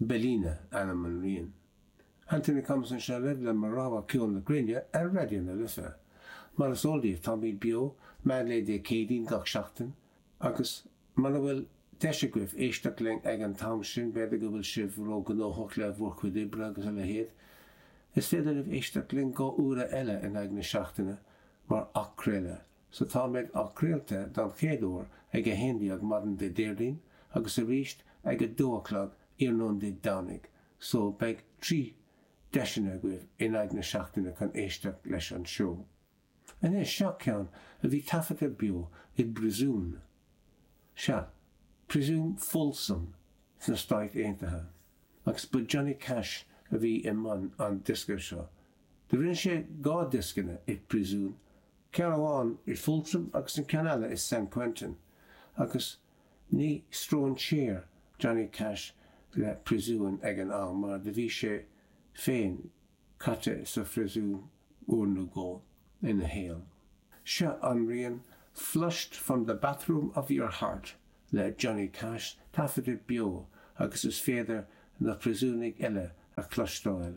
Bellina ainm an riain. Anthony Thompson seo libh le mo rogha ceol na gréine ar Raidió na Life. Mar is eol daoibh, táimid beo, meánlae Dé Céadaoin gach seachtain, agus mura bhfuil deis agaibh éisteacht linn ag an t-am sin, b'fhéidir go bhfuil sibh ró-ghnóthach le bhur chuid oibre agus a leithéad, is féidir libh éisteacht linn dhá uaire eile in aghaidh na seachtaine mar athchraoladh. Sea, táimid athchraolta don chéad uair ag 11 maidin Dé Déardaoin agus arís ag 2 a chlog iarnóin Dé Domhnaigh, so beidh trí deiseanna agaibh in aghaidh na seachtaine chun éisteacht leis an seó. Anois, seo ceann a bhí taifeadta beo i bpriosún, sea, priosún Folsom sna Stáit Aontaithe, agus ba Johnny Cash a bhí i mbun an diosca seo. Do rinne sé dhá dioscanna i bpriosún Ceann amháin i Folsom agus an ceann eile i San Quentin agus ní stróinséar Johnny Cash le príosúin ag an am mar do bhí sé féin caite sa phríosún uair nó dhó ina shaol. Seo an rian 'Flushed From The Bathroom Of Your Heart' le Johnny Cash taifeadta beo agus is féidir na príosúnaigh eile a chloisteáil